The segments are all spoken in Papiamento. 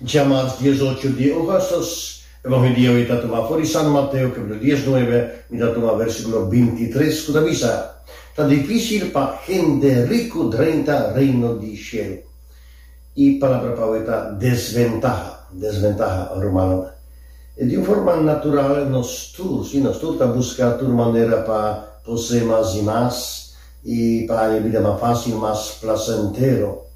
Dja mas dies ocho di ogastos, e mohe di awe ta tuma for di San Mateo capitulo dies nuebe, mi ta tuma versiculo binti tres cu ta bisa, Ta dificil pa hende ricu drenta Reino di Cielo. E palabra pa awe ta desventaha, desventaha, rumannan. E di un forma natural nos tur, si, nos tur ta busca tur manera pa posee mas y mas, I pa haña bida mas fásil i mas plasentero.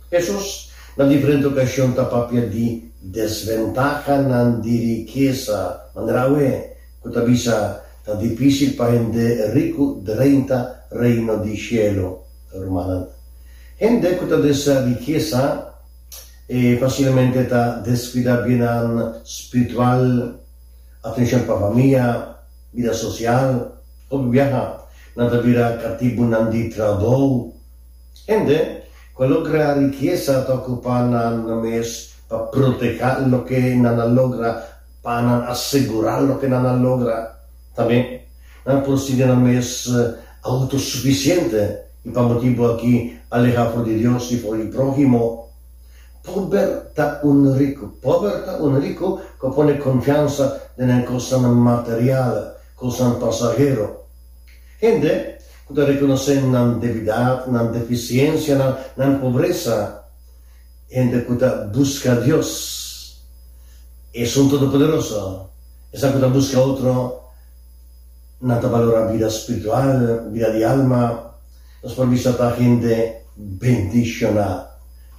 Hesus na diferente okashon ta papia di desventahanan di rikesa, manera awe ku ta bisa ta difísil pa hende riku drenta Reino di shelu. Rumannan, hende ku ta desea rikesa e fasilmente ta deskuidá biennan spiritual, atenshon pa famia, Bida sosial, Hopi biaha nan ta bira katibunan di trabou. Hende ku a logra rikesa ta okupá nan nan mes pa protehá loke nan a logra, pa nan asegurá loke nan a logra. Tambe nan por sinti nan mes autosufisiente i pa motibu akí alehá for di Dios i for di próhimo. Pober ta un riku. Pober ta un riku ku a pone konfiansa den e kosanan material, kosanan pasahero. Hende ku ta rekonosé nan debidat, nan defisiensianan, nan pobresa, hende ku ta buska Dios, esun todopoderoso, esnan ku ta buska otro, nan ta balorá bida spiritual, bida di alma. Nos por bisa ta hende bendishoná.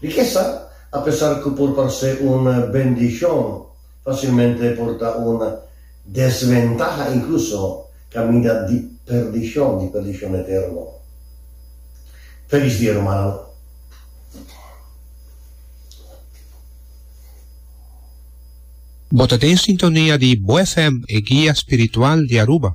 Di ke sa? Apesar ku por parse un bendishon, fasilmente por ta un desventaha, inkluso kaminda di perdishon, di perdishon eterno. Felis dia, rumannan! Bo ta den sintonia di Bo FM, e guia spiritual di Aruba.